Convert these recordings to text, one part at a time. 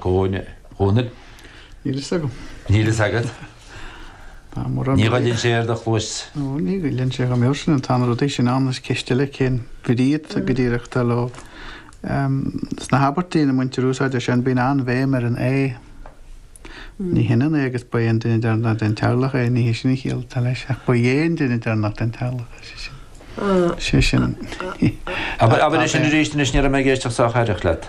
Dhún Chonaill? Níl fhios agam. Níl fhios agat? Tá mórán rudaí. Ní ghoilleann sé ar do chluais. Ó, ní ghoilleann sé dhom fheirsinn. Tá na rudaí sin ann, is ceist eile cén bhrí atá go díreach atá leo. Em, sna habairtí ina mbaintear úsáid as, bíonn an-bhéim ar an 'é'. Ní hionann é agus 'ba dh'é an duine deireanach den teaghlach é', ní hé sin an chiall atá leis, ach 'ba dh'é an duine deireanach den teaghlach é', sé sin. Sé sin. Abair, abair é sin arís anois, ní raibh mé ag éisteacht sách aireach leat.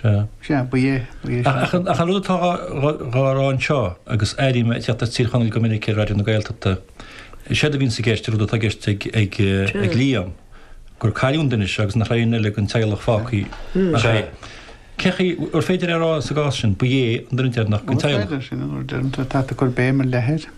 Sea. Sea, ba é, ba é sin. Ach an rud atá dhá rá anseo, agus airím ag teacht as Tír Chonaill go minic ar Raidió na Gaeltachta, is éard a bhíonns i gceist, an rud atá i gceist ag Liam, gur cailliúint anois é agus nach raibh aon duine dhen teaghlach fágthaí ach é. Cé chaoi ar féidir é a rá sa gcás sin, ba é an duine deireanach dhen teaghlach? An rud deireanach, sin an rud deireanach atá ag cur béim ar leith air.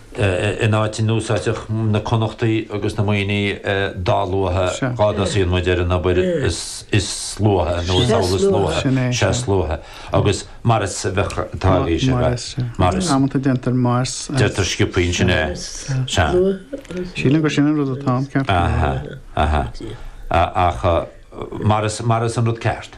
in áit a n-úsáidfeadh na Connachtaigh agus na Muimhnigh dá luaithe dá dtosaíonn muid ar an obair is luaithe nó is amhlaidh is luaithe, sea is luaithe agus mar is a bheadh tá a fhios agat, mar is. Amanta déantar mar is. Déantar sciopthaí ansin é, sea. Sílim gur sin an rud atá ann, ceart go leor. Aha, aha. Ach mar is an rud ceart.